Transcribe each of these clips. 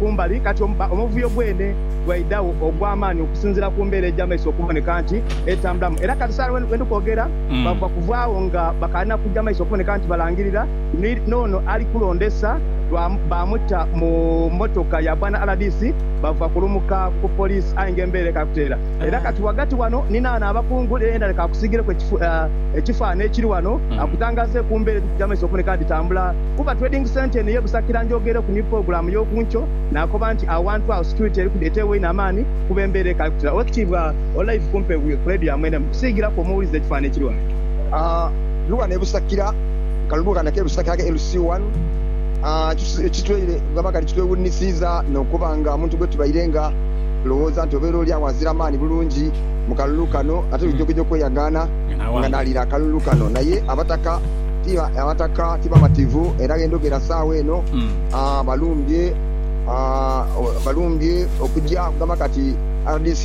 ku mbali. Kati omuvuyo gwene gwaidhagho ogw'amaani okusinziira ku mbeera egy'amaiso okuboneka nti etambulamu. Era kati saala we ndi kwogera bava kuvaagho nga bakaali na kuja maiso okuboneka nti balangirira, ni n'ono ali kulondesa baamuta mu mmotoka ya bwana rdc bava kulumuka ku poliisi aye nga embeera ekaali kutereera. Era kati ghagati ghano ni naano abakungu ni Leonard kaakusiigireku ekifaanhi ekiri ghano akutangaaze ku mbeera edhiri kuja maiso okuboneka nti dhitambula. Kuba Trading Centre eno ey'ebusakira njogere ku new pulogulaamu y'oku nkyo, naakoba nti awantu agho security eriku eteebwa inho amaani kuba embeera ekali kutira. Owekitiibwa Olive kumpe ku leediyo ya mwene mu kusiigiraku omuwulize ekifaananhi ekiri ghano. Ndi ghano e Busakira, kalulu kano ake Busakira ake LC one, gamba kati kitwewuunisiiza n'okuba nga omuntu gwetubaire nga tulowooza nti obeera oli agho azira maani bulungi mu kalulu kano ate lujogejoge okweyagaana nga n'aliira akalulu kano naye abataka ti abataka ti bamativu era ghe ndhogera saagho eno balumbye balumbye okugya okugamba kati rdc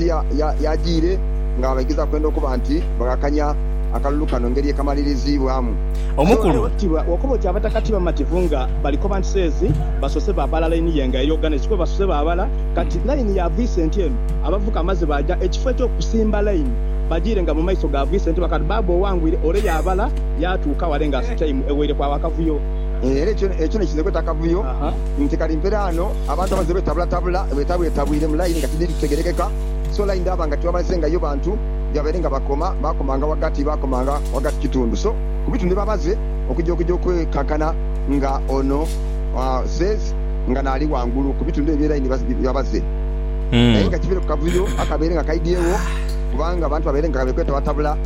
yajiire nga baigeza kwenda okuba nti baghakanhya akalulu kano ngeri ekamaliriziibwamu. Omukulu. Bwokoba oti abataka ti bamativu nga bali koba nti seezi basoose baabala line ye nga eri oghana ekifo basoose baabala kati line ya Vicent eno abavuka amaze baaja ekifo ekyokusimba line bajiire nga mu maiso ga Vicent bakati baaba owangwire ole yaabala yaatuuka wale nga asutaime ewaire kwagho akavuyo. Era ekyo ekyo n'ekize kweta akavuyo nti kali mpera ano abantu abaze betabulatabula, betabwetabwire mu layini nga tidhiri kutegerekeka. So layini dhaaba nga tibamazengayo bantu byabaire nga bakoma, baakomanga ghagati, baakomanga ghagati kitundu. So ku bitundu byebamaze okuja okuja okwekankana nga ono says nga naali ghangulu ku bitundu ebyo bye layini byabaze. Aye nga kiveire ku kavuyo akabaire nga kaidhyegho kubanga abantu babaire nga bekwetabatabula.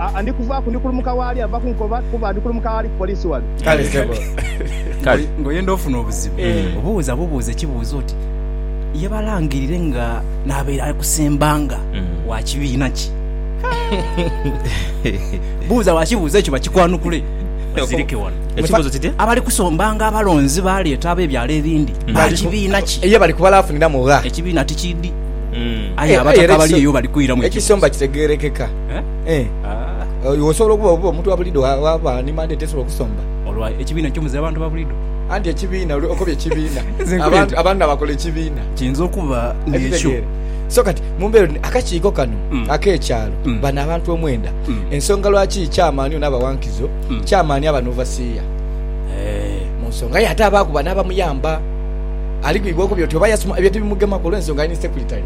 Aa, ndi kuvaaku, ndi kulumuka w'ali ava kunkoba, kuba ndi kulumuka aghali ku poliisi ghale. Kale ssebo, Kale. ng'oyenda ofuna obuzibu, obuuza bubuuza ekibuuzo oti, Ye balangirire nga n'abaire akusembanga wa kibiina ki? Buuza wa kibuuzo ekyo bakikwanukule, bazirike wano. Ekibuuzo kitya? Abali kusombanga abalonzi baleeta ab'ebyalo ebindi, ba kibiina ki? Ye bali kubala afuniramu gha? Ekibiina tikiidhi, aye abataka abali eyo bali kwiramu ekibuuzo. Ekisomba kitegeerekeka. Eh, ah, iwe osobola okuba oba omuntu wa bulido wa- waba ni mandate esobola okusomba? Olwa ekibiina eky'omuzira abantu ba bulido. Anti ekibiina, oli okobye ekibiina. Nze nkoba Abantu nti- abantu abakola ekibiina. Kiyinza okuba ng'ekyo. Okitegeera? So kati mu mbeera eno, akakiiko kano Mm. ak'ekyalo, Mm. bano abantu omwenda, Mm. ensonga lwaki chairman ono abawankizo, Mm. chairman aba n'ovasiiya Eh, mu nsonga ye ate abaakuba n'abamuyamba. Ali gwigwa okubye oti oba yasoma ebyo tibimugemaku olw'ensonga ali ni secretary.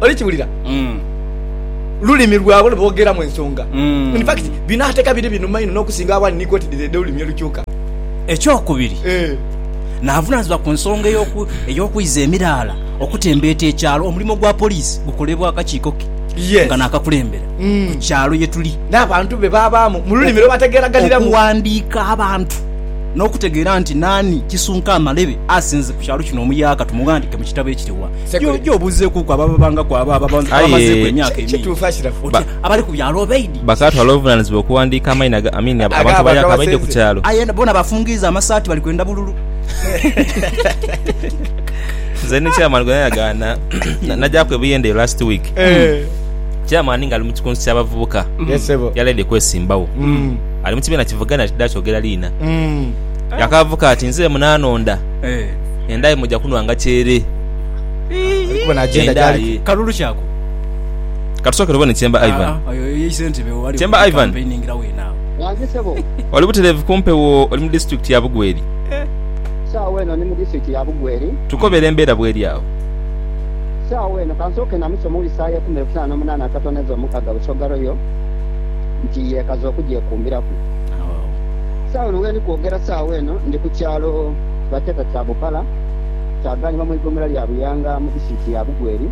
oli kiwulira mm. lulimi lwabwe lweboogeramu ensonga mm. in fact bino ateeka biri binuma ino n'okusinga awali ni kooti dhire edh'olulimi olukyuka ekyokubiri eh. n'avunaanyizibwa ku nsonga ey'okwiza emiraala okutembeeta ekyalo omulimo gwa poliisi gukolebwa akakiiko ke yes. nga naakakulembera mm. ku kyalo ye tuli n'abantu be baabaamu mu lulimi lwe bategeeraganiramu okuwandiika abantu n'okutegeera nti naani kisunka amalebe asinze ku kyalo kino omuyaaka tumuwandiike mu kitabo ekiriwa Gye obuuzeekuuku abo ababangaku, abo abamazeeku emyaka emingi, oti, Abali ku byalo obaidhi? Bakaatwala obuvunaanizibwa okuwandiika amaina g'abantu abayaaka abaidhi ku kyalo. Aye boona bafungiiza amasaati bali kwenda bululu. Nze ni Chairman gwe nayagaana nagyaaku e Buyende eyo last week. Chairman ng'ali mu kikunsu ky'abavubuka yaleede kwesimbawo. Ali mu kibiina kivugane ali tidha kyogera liina. Yakavuga ati, Nze munanonda. Endaaye muja kunwanga kyere. Endaaye. Kalulu ki ako? Katusooke tubone Chemba Ivan. Chemba Ivan. Oli butereevu ku mpewo oli mu disitulikiti ya Bugweri? Sawa eno ndi mu disitulikiti ya Bugweri. Tukobere embeera bweri agho. Sawa eno kansooke namusa omuwulize saawa ya ikumi n'ebutaano n'omunaana akatono edha omukaga Busoga Royal nti yeekaza okugyekumbiraku. Sawa eno wendi kwogera saawa eno ndi ku kyalo. Baketa Kyabupara kyaganibwa mu igomera lya Buyanga mu disitirikiti ya Bugweri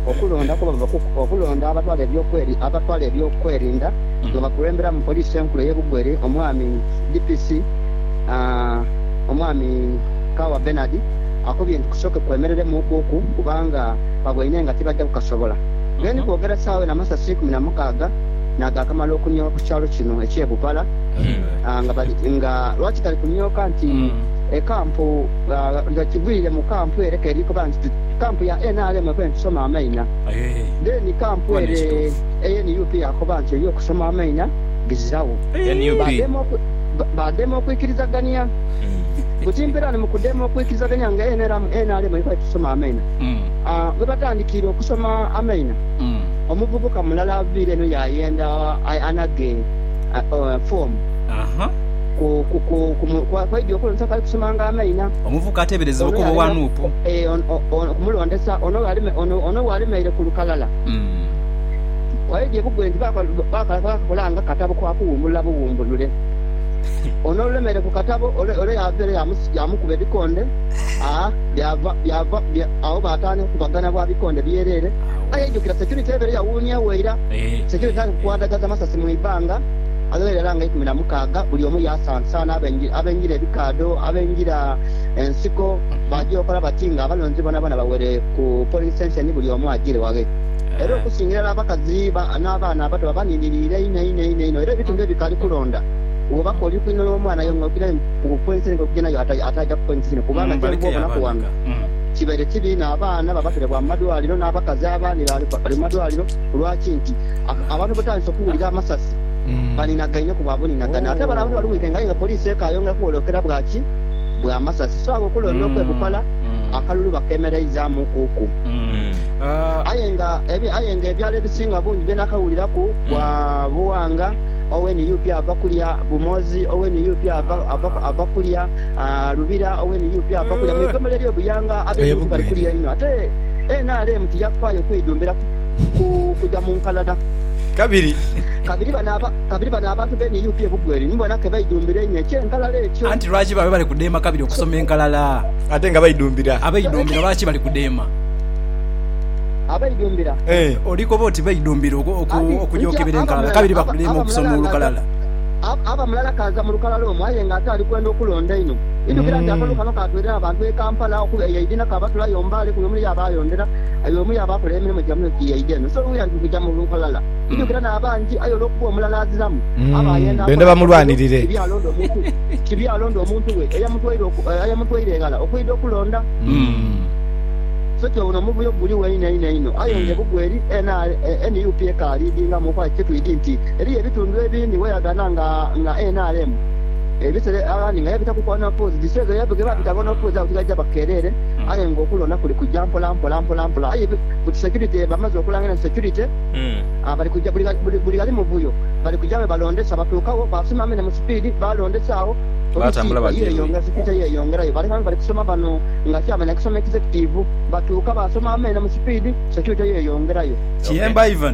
okulonda kuba bava kuku okulonda abatwala ebyokweri abatwala ebyokwerinda nga bakulembera mu poliisi enkulu eye Bugweri omwami DPC omwami Kawa Bernard akobye nti kusooke kwemereremu kuku kubanga baboine nga tibaja kukasobola Gen kwogera saawa eno amasasi ikumi na mukaaga nagakamala okunyowa ku kyalo kino ekye Bupara. nga lwaki tali kunyooka nti ekampu nga kigwire mu kampu ere keri koba nti kampu ya nrm ekoba etusoma amaina then kampu ere eya nup yakoba nti eyo okusoma amaina bizirawo badema okwikirizagania buti mpera ni mukudema okwikirizagania nga nrm erikoba etusoma amaina webatandikiire okusoma amaina omuvubuka mulala aviire eno yayenda anage fomu kw'aidha okulondesa kw'ali kusomanga amaina. Omuvubuka ateeberezebwa okuba owa nup. Okumulondesa ono bw'alemeire ku lukalala, kw'aidha ebugwe nti baakakola nga katabo ka kuwumbulula buwumbulule. Ono olulemeire ku katabo ole yaava ere yaamukuba ebikonde agho baatandika okukubagana bwa bikonde byereere. Aye aidhukira securite ebaire yawuuniegho eira. Sekei tali kukwandhagaza masasi mu ibanga, agagherera nga ikumi na mukaaga, buli omu yaasansaana abengira ebikaadho, abengira ensiko, baaja okola bati nga abalonzi boonaboona bawere ku polling station buli omu ajiire waghe. Era okusingira irala abakazi n'abaana abato baba baninhiriire inho inho inho inho era ebitundu ebikaali kulonda bwoba k'oli kwinho y'omwana aye ng'okira ku polling station ng'okija nayo ataaja ku polling station kubanga kyenvu obonaku ghano. Kibaire kibi inho abaana babaterebwa mu madwaliro n'abakazi aba ni baali bali mu madwaliro kulwa ki? Nti abantu bwebataandise okuwulira amasasi baninagaine ku bwa buninagane ate bale abantu bali weekend aye nga poliisi ekaayongera kuwolokera bwa ki? Bwa masasi. So agho okulonda okwebupala akalulu bakemereizaamu ku ku. Aye nga aye nga ebyalo ebisinga obungi bye nakawuliraku bwa Buwanga owe nup ava kulya, Bumozi owe nup ava kulya, Lubira owe nup ava kulya mwigomero elyo buyanga abenup bali kulya inho ate nrm tiyafaayo kweidumbira ku kuja munkalada kabiri bano abantu be nup ebugwa eri nibona kebeidumbira einho ekye nkalala ekyo. Anti lwaki babe bali kudheema kabiri okusoma enkalala ate nga beidumbira? Abeidumbira lwaki bali kudheema? Abeidumbira? Oli koba oti beidumbira okuja okebera enkalala kabiri bakudheema okusoma olukalala? aba mulala kaaza mu lukalala omwo aye nga ate ali kwenda okulonda einho. Idhukira nti akalulu kano kaatwerera abantu b'e Kampala okuba eyo eidhi na kabatula yo Mbale kuno omuli abaayondera aye omu y'abaakola emirimo gya muno giyeidha eno. So luuya nti nkuja mu lukalala idhukira n'abangi aye olw'okuba omulala aziramu aba ayenda akola akavuyo kibi alonde omuntu kibi alonde omuntu we eyamutwaire eghala okwidha okulonda. So ky'obona omuvuyo guliwo einho einho einho aye nga ebugwa eri nup ekaaliidingamu okwa kye twidhi nti Eriyo ebitundu ebindi weyagana nga nga nrm ebisera aghandi nga yabitaku kwanafuuzi diseza yabwe gebabita abanafuuzi abo tibaija bakereere aye nga okulonda kuli kuja mpola mpola mpola mpola aye buti security bamaze okulangila nti security bali kuja buli buli ghali muvuyo bali kuja webalondesa batuukagho basima mene mu sipiidi balondesa agho police yeyongera security yeyongerayo baleka nga bali kusoma bano nga chairman akusoma executive batuuka basoma mene mu sipiidi security yeyongerayo. Kiyemba Ivan.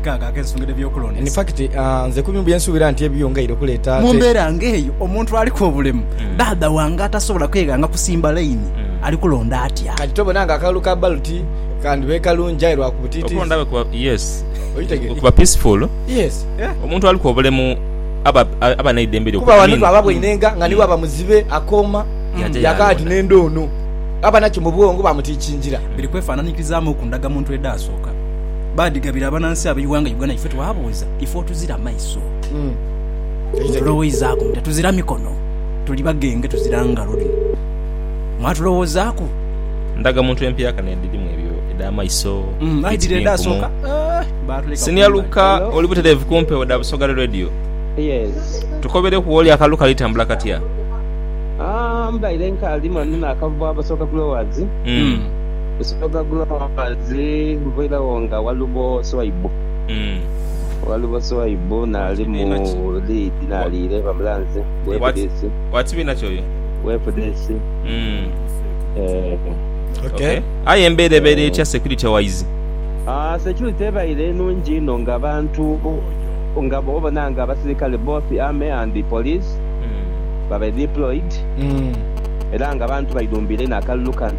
kaaga ak'ensongede eby'okulondesa. In fact, nze ku bimu bye nsuubira nti ebibyo ngaire okuleeta ate. Mu mbeera ng'eyo, omuntu aliku obulemu, dhaadha wange atasobola kweghanga kusimba layini, ali kulonda atya? Kati tobona nga akalulu ka baloti kandhibaire kalungi aye lwa ku butiitiizi. Okuba ndhabe kuba, yes, okuba peaceful. Omuntu aliku obulemu aba aba n'eidembe lye. Kuba wano bwaba bweinenga nga ni bwaba muzibe akooma yaakagha ati n'endha ono. Aba nakyo mu bwongo bamutiikingira. Biri kwefaananyirizaamu ku ndagamuntu edhaasooka. baadhigabira abanansi ab'eighanga Uganda ife twabuuza ife otuzira maiso mwatuloweizaku muti tuzira mikono tuli bagenge tuzira ngalo dhino mwatulowoozaku Ndaga muntu empyaka n'edhirimu ebyo edh'amaiso, fiti bi nkumu. Senior Luka oli butereevu ku mpewo dha Busoga Radio. Tukobereku w'oli akalulu kali tambula katya? Kusooka Growers nviiregho nga Walubo Swaibu. Walubo Swaibu naali mu liidi naaliire bamulanze ku FDC. Wa kibiina ki oyo? Ku FDC, ee. Ok. Aye embeera ebaire etya security wise? Security ebaire nungi inho nga abantu nga bwobona nga abasirikale both Army and Police babaire deployed era nga abantu baidhumbiire inho akalulu kano.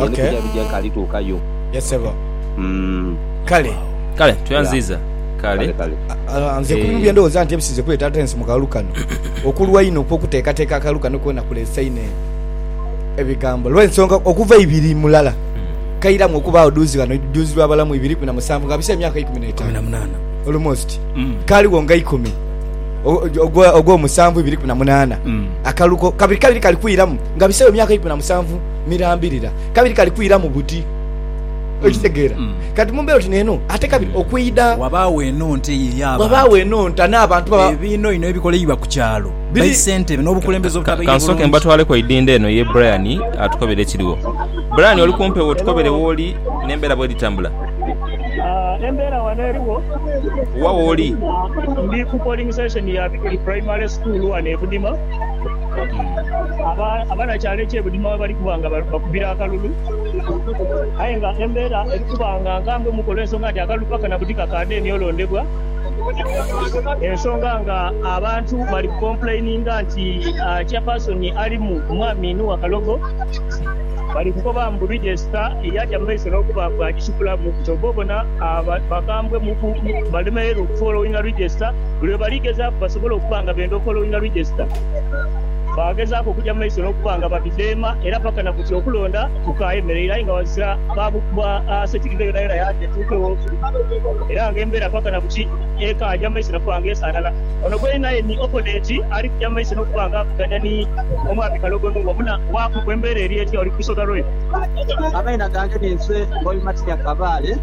Ye ni kuja bije nka alituukayo. Yes sebo. Kale. Kale tweyanziiza. Kale. Nze ku bibye ndowooza nti ebisize kuleeta Artemis mu kalulu kano, okulwa inho okw'okuteekateeka akalulu kano koona kuleese inho ebigambo olw'ensonga okuva eibiri mulala kairamu okubaagho dhuuzi ghano dhuuzi lwa balamu ibiri ikumi na musanvu nga bise emyaka ikumi n'etaanu almost kaligho nga ikumi ogw'omusanvu ibiri ikumi na munaana akalulu kabiri kabiri kali kwiramu nga biseegho emyaka ikumi na musanvu. mirambirira, kabiri kali kwira mu buti. Okitegeera? Kati mu mbeera oti n'eno, ate kabiri okwidha. Wabaawo eno nte eyiri abantu. Wabaawo eno nta n'abantu baba. Ebiino ino ebikoleibwa ku kyalo, baisentebe n'obukulembeze obutabaire bulungi. Ka nsooke mbatwaleku eidhindho eno ye Brian atukobere ekiriwo. Brian, oli kumpi owo? Tukobere w'oli n'embeera bw'eri etambula. Embeera wano eriwo. Wa w'oli? Ndi ku polling station ya Bikuli Primary School wano e Budima. Kati, aba, abanakyalo ekyebudima ghebali kuba nga bakubira akalulu, aye nga embeera eri kuba nga nkambemuku olw'ensonga nti akalulu paka na buti kakaadeni olondebwa, ensonga nga abantu bali ku complaininga nti Chairperson alimu mwami Nuwa Kalogo, bali kukoba mbu Register yaja mu maiso n'okuba bw'agisukulamu, kyova obona aba, bakambwemuku, balemereirwe okufollowinga Register. lwe bali gezaaku basobole okuba nga benda okola olina register, baagezaaku okugya mu maiso n'okuba nga babidheema era paka na buti okulonda kukaayemereire aye nga ghazira baasetikidhe yonayona yaadhi etuukegho era nga embeera paka na buti ekaagya mu maiso na kuba nga esaanana. Ono gweli naye ni Opponent ali kugya mu maiso n'okuba nga avuganya ni Omwami Kalogo Nungwa muna waaku ku embeera eri etya oli ku lusoga lwe. Amaina gange ninze Ngobi Matinya Kabaale.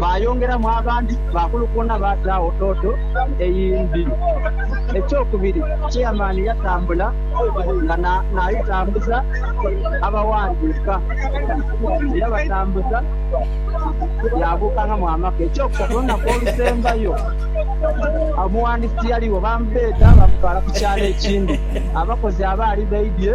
baayongeramu abandi baakulukuuna baataagho tooto eyindi. Ekyokubiri, Chairman yatambula nga n'ayitambuza abawandiika. Yabatambuza yaabuukangamu amaka. Ekyokusatu, olunaku olusembayo omuwandiisi tiyaligho, baamubeeta baamutwala ku kyalo ekindi abakozi abaali baidhye.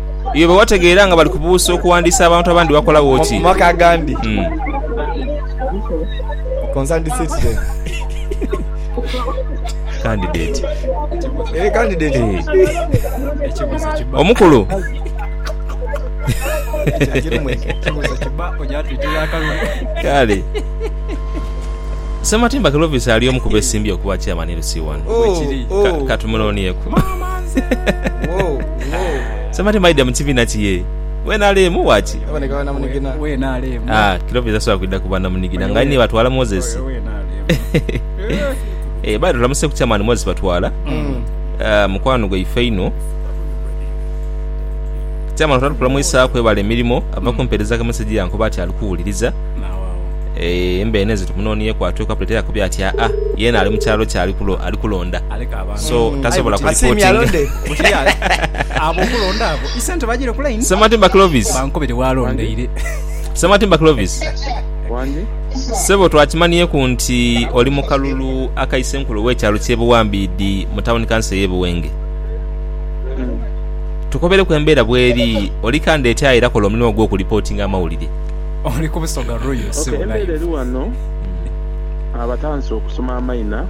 Iwe bwe wategeera nga bali kubuusa okuwandiisa abantu abandi wakolawo ki? Mu maka agandi, omukulu Kale. Ssematimba Clovis ali omu ku beesimbyewo okuba Chairman LC1. Ka- Katumuloonieku. Somebody maidha mu kibiina ki yee. We NRM wa ki? Aboneka banamunigina. We NRM. Ah, Kilopi tasobola kwidha ku banamunigina nga aye ni batwala Moses. We NRM. Eh, by the way tulamuseku Chairman Moses Batwala. Ah, mukwano gwaife inho. Chairman twala tukula mwisaa kwebala emirimo. Ava kumpereza ka message yankuba ati ali kuwuliriza. Eh, embeeno ezo tumunonyeku atweku apuleti eyakubye ati aa, yena ali mu kyalo kye ali kulo, ali kulonda. so tasobola ku reportinga. Ssematimba Clovis. Ssematimba Clovis. Ssebo twakimanhieku nti oli mu kalulu aka Isenkulu w'ekyalo ky'e Buwambiidi mu tawuni kanso ey'e Buwenge. Tukobereku embeera bw'eri, oli kanda etyaye era kola omulimu gwo ku reportinga amawulire. Embeera eri ghano, abatandise okusoma amaina.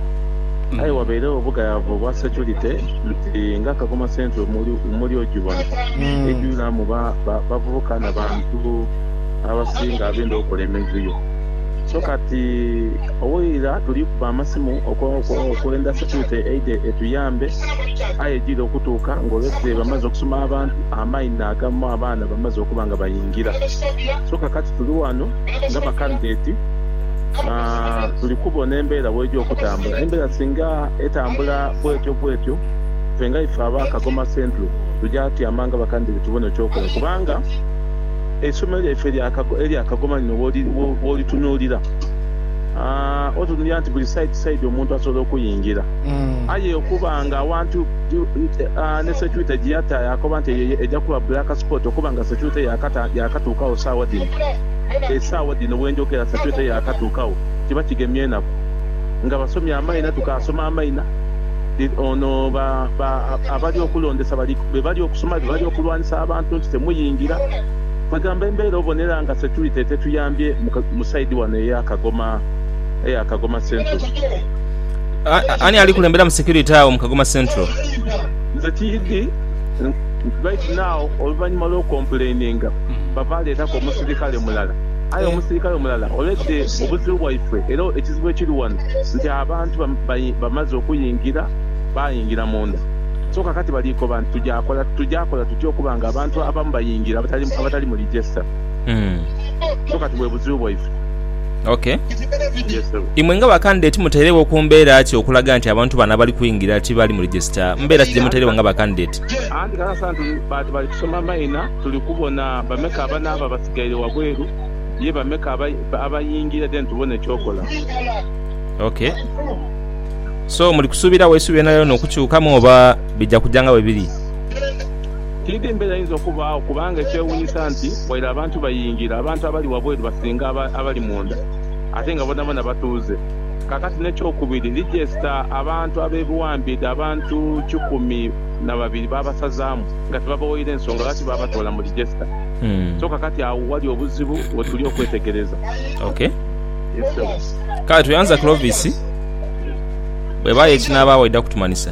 Aye wabairegho obugayaavu obwa securite nti nga Kagoma Central muli ogibona, eidhwiraamu bavubuka na bantu abasinga abenda okola emivuyo. So kati owaira tuli kuba amasimu okwenda securite eidhe etuyambe aye ejiire okutuuka nga already bamaze okusoma abantu, amainha agamu abaana bamaze okuba nga baingira. So kakati tuli wano. nga bakandideeti, tuli kubona embeera bw'eja okutambula. Embeera singa etambula bwetyo bwetyo, ife nga ife aba Kagoma Central tuja tyama nga bakandideeti tubone eky'okola kubanga eisomero lyaife erya Kagoma lino bw'olitunuulira otunulira nti buli saidi saidi omuntu asobola okuyingira aye okuba nga awantu. ni securite gye yata yaakoba nti eyo eja kuba black spot okuba nga securite yaakatuukagho saagha dhino. Esaagha dhino bwe njogera securite yaakatuukagho kiba kigemye enaku nga basomye amaina tukaasoma amaina. Ono abali okulondesa be bali okusoma be bali okulwanisa abantu nti temuyingira. Kwegamba embeera obonera nga securite etetuyambye mu side wano eya Kagoma Central. Ani ali kulemberamu security agho mu Kagoma Central? Nze tiidhi right now oluvanyuma lwo complaininga bava leetaku omusirikale mulala aye omusirikale omulala already obuzibu bwaifwe era ekizibu ekiri wano nti abantu bamaze okuyingira bayingira munda so kakati bali koba nti tuja kola tutya okuba nga abantu abamu bayingira abatali mu register so kati bwebuzibu bwaifwe. Ok. Yes sebo. Imwe nga ba candidate mutairegho ku mbeera ki okulaga nti abantu bano abali kwingira tibali mu register? Mbeera ki dhemutairegho nga ba candidate? Anti kale asanti tuli bantu bali kusoma maina, tuli kubona bameka abanaaba abasigaire wabweru, ye bameka abayingira then tubone ekyokola. Ok. So muli kusuubiragho eisubi lyonayona okukyukamu oba bija kuja nga bwebiri? Tiidhi mbeera eyinza okubaagho kubanga ekyewuunyisa nti waire abantu bayingira, abantu abali wabweru basinga abali munda ate nga bonabona batuuze. Kaakati n'ekyokubiri, lijesita abantu ab'ebiwambiidhe abantu kikumi na babiri baabasazaamu nga tibabawaire nsonga lwaki baabatoola mu lijesita. So kaakati agho wali obuzibu we tuli okwetegereza. Ok. Yes, ssebo. Kale tweyanza Clovis. Bw'ebaayo ekinaabaawo aidha kutumanhisa.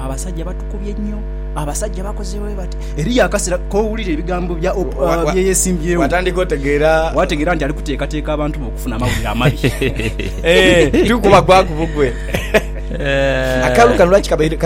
Abasajja batukubye nyo. Abasajja bakoze bwebati. Eriyo akasera kowulira ebigambo bya Oprah byeyesimbyewo. Watandika otegeera. Wategeera nti ali kuteekateeka abantu be okufuna amawulire amabi. Eeh, tikuba kwaku bugwe. Akaalo kano lwaki kabaire.